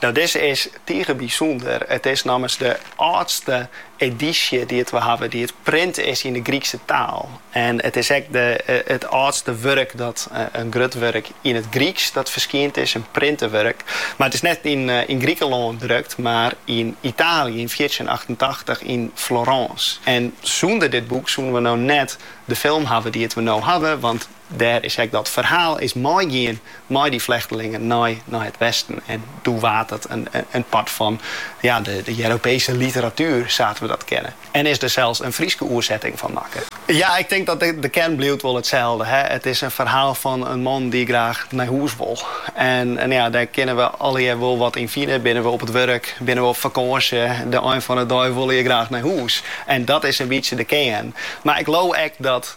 No dizze is tige bysûnder. It is nommers de âldste edysje dy't we hawwe dy't print is yn de Grykske taal. En it is ek it âldste wurk dat in grut wurk yn it Gryksk dat ferskynd is, in printe wurk. Mar it is net yn Grikelân drukt, mar yn Itaalje yn fjirtjinhûndertachtentachtich yn Florâns. En sûnder dit boek soene we no net de film hawwe dy't we no hawwe, want, Dêr is ek dat ferhaal is meigien mei dy flechtelingen nei nei it westen. En doe waard it in part fan ja, de de Jeropese literatuer sa't we dat kenne. En sa is der sels in Fryske oersetting fan makke. Ja, ik tink dat de kern bliuwt wol itselde. Hè. It is in ferhaal fan in man dy't graach nei hûs wol. En ja, dêr kinne we allegear wol wat yn fine. Binne we op it wurk, binne we op fakânsje, de ein fan de dei wolle je graach nei hûs. En dat is in bytsje de kern. Mar ik leau ek dat.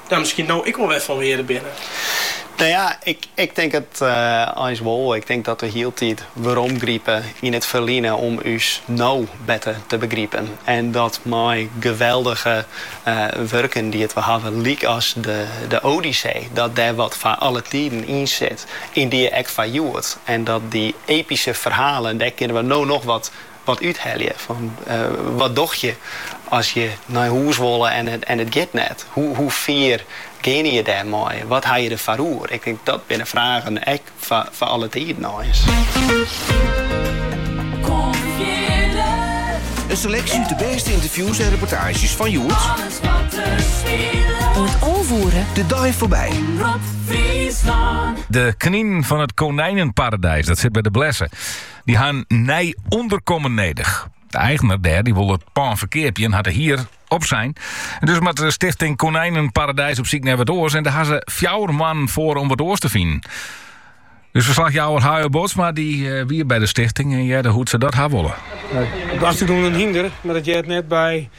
ek wol wer fan wearde binne? No ja, ik tink it eins wol. Ik tink dat we hieltyd weromgripe yn it ferline om ús no better te begripen. En dat mei geweldige wurken dy't we hawwe, lykas de Odyssee, dat dêr wat foar alle tiden yn sit, yndie ek foar hjoed. En dat dy epyske ferhalen, dêr kinne we no noch wat Wat úthelje fan wat dogge je as je nei hûs wolle en it giet net? Hoe fier geane je dêr mei? Wat ha je der foar oer? Ik tink dat binne fragen dy't foar alle tiden nij is. In seleksje út de bêste ynterviews en reportaazjes fan hjoed. Oant alve oere. De dei foarby. De kninen fan it Konijnenparadijs, dat sit by De Blesse. Dy ha in nij ûnderkommen nedich. De eigener dêr dy wol it pân ferkeapje en hat de hier opsein. Dus moat de stichting Konijnenparadijs op syk nei wat oars en dêr ha ze fjouwer moannen foar om wat oars te finen. Dus verslagjouwer Hayo Bootsma dy eh, wie by de stichting en hearde hoe't se dat ha wolle. Dêr stiet ek in hynder, mar dat heart net by